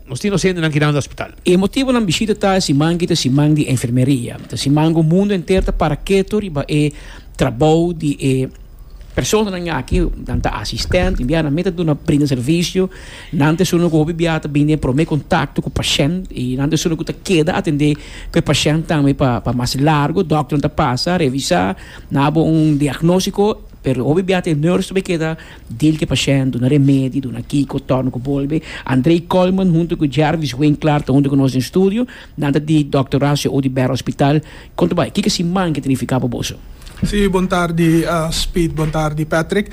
Nos tin dos hendenan ki dando hospital. E motibo nan bishita ta siman ki ta siman di enfermeria. Ta siman ku mundo enter ta para ketu riba e trabou di e personanan aki. Nan ta asistent, tin bia nan mita duna brinda servisio. Nan ta esun ku hopi bia ta bini den e prome kontakto ku pashent i nan ta esun ku ta keda atende ku e pashent tambe pa pa mas largu. Dòkternan ta pasa, revisa, na bo un diagnostiko, pero hopi bia ta e nurse ta be keda. Dil te pashènt, duna remedi, duna kiko, tòrna ku bolbe. Andrei Kollman huntu ku Jervis Winklar ta huntu ku nos den studio. Nan ta di Dòkter Horacio Oduber Hospital. Konta bai, kiko siman ke ta nifiká pa boso? Sí, bon tardi Speed, bon tardi Patrick.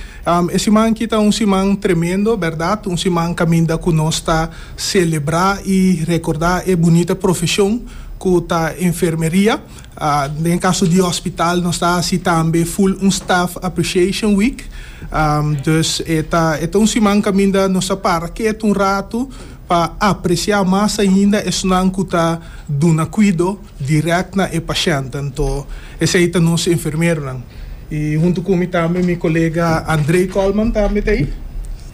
E siman aki ta un siman tremendo, bèrdat, un siman kaminda ku nos ta selebrá i rekordá e bunita profeshon ku ta enfermeria. Den kaso di hospital nos ta hasi tambe full un staff appreciation week, dus e ta e ta un siman kaminda nos ta para kiet un ratu pa apreciá mas ainda esnan ku ta duna kuido direct na e pashèntnan. Tò esei ta nos enfermeronan. I huntu ku mi tambe mi kolega André Colman tambe ta ei.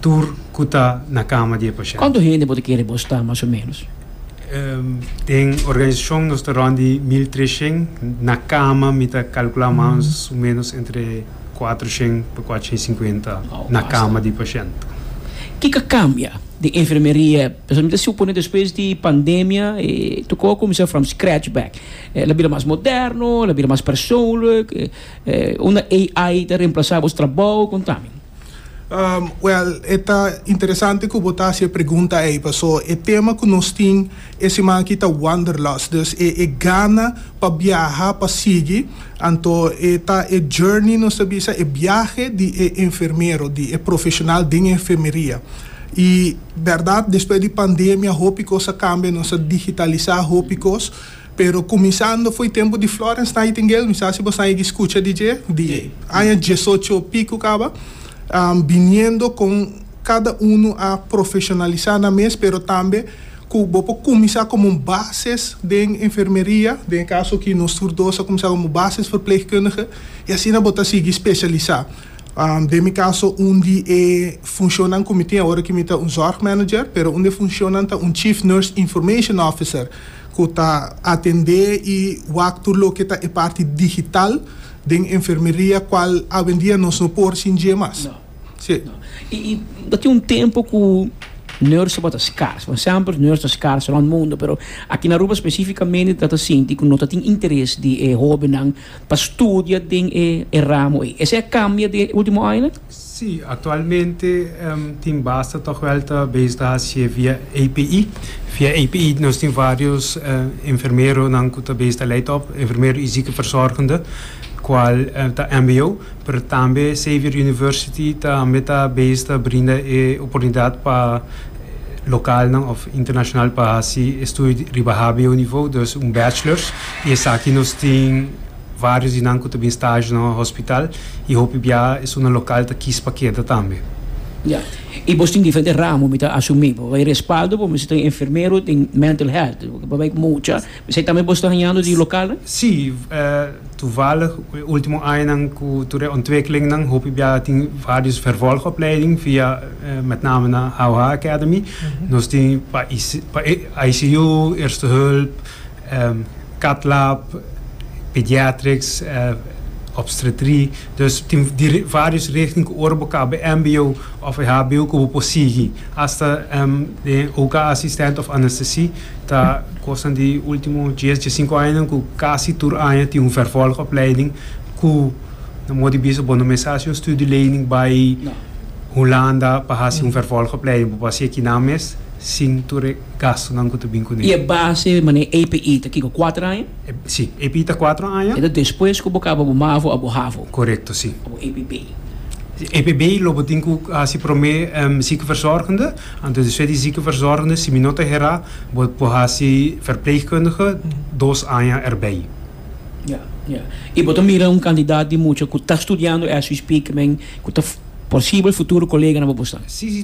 tur cu ta na cama di e pashent. Cuantu hende bo ta kere bo sta mas o menos? Den organisacion nos ta rond di mil treshen, na cama mi ta calcula mas o menos entre cuatroshen pa cuatroshen cincuenta Wow, na basta. cama di pashent. Ki ka cambia den enfermeria? Pasobra mi ta supone despues di pandemia e tocó a cuminsa from scratch back. El a bira mas moderno, el a bira mas persoonlijk, e unda AI ta reemplaza bos trabao, con ta mi. Well, e ta interesante cu bo ta haci e pregunta ei, paso e tema cu nos tin e siman aki ta wanderlust, dus e e gana pa biaha, pa sigui, anto e ta e journey, nos ta bisa, e biahe di e enfermero, di e profesional den enfermeria. Y berdad, despues di pandemia hopi cos a cambia, nos a digitaliza hopi cos, Pero kuminsando fo'i tempu di Florence Nightingale, mi sa si bo saigi skucha di dje, di aña diesocho piku kaba, biniendo kon kada unu a profeshonalisá nan mes, pero tambe ku bo por kuminsá komo un bases den enfermeria, den e kaso aki nos tur dos a kuminsá komo bases verplegkundige, i asina bo ta sigui speshalisá. Den mi kaso, un di e funshonnan ku mi tin, awor aki mi ta un zorgmanager, pero un di e funshonnan ta un Chief Nurse Information Officer. ku ta atendé i wak tur loke ta e parti digital den enfermeria kual awendia nos no por sin dje mas. No. Sí. No. I, i ta tin un tempu ku nursenan ta skars. Bon, sèmpers nurse ta skars rònt mundu, pero aki na Aruba spesífikamente ta ta sinti ku no ta tin interes di e hóbennan pa studia den e ramo ei. Esei a kambia den e último añanan? Sí, aktualmente tin basta tòg wèl ta bezig hasié via API. Via API nos tin vários enfermeronan ku ta bezig ta lei tòg, enfermero i ziekenverzorgende, kual ta mbo, pero tambe Xavier University tambe ta bezig ta brinda e oportunidat pa lokalnan òf internashonal pa hasi e studio riba hbo nivou, dus un bachelors, i esaki nos tin. Varios di nan cu ta bin stagio na hospital y hopi bia esun na local ta kis pa keda tambe. Ya. Y bos tin diferente ramo mi ta asumi. Pa bay respaldo bo mester tin enfermero, tin mental health. Pa bay mucha. Esey tambe bos ta hañando di local? Si. Toevallig e ultimo añanan cu tur e ontwikkelingnan hopi bia tin varios vervolgopleiding via met name na Hauha Academy. Nos tin pa ICU, Eerste Hulp. Cath lab, pediatrics, obstetry. Dus tin varios richting cu ora bo caba e mbo of e hbo cu bo por sigui. Hasta den OK assistent of anesthesie ta cosnan di ultimo dies, dies cinco añanan cu casi tur aña tin un vervolg opleiding cu nan modo di bisa bo no mester haci un studio lening bay Hulanda pa haci un vervolg opleiding. Bo por haci aki nan mes sin tur e. gastunan ku ta bin kuné. I e base manera APE ta kiko? Kuater aña? E, si. APE ta kuater aña. Enton despues ku bo kaba bo mavo a bo havo. Korekto, si. A bo APB. APB lo bo tin ku hasi promé ziekenverzorgende. Anto despues di ziekenverzorgende, si mi no ta herá, bo por hasi verpleegkundige dos aña erbij. Ya, ya. I bo ta mira un kandidat di mucha ku ta studiando as we speak men ku ta posibel futuro koleganan bo por sa? Si, si.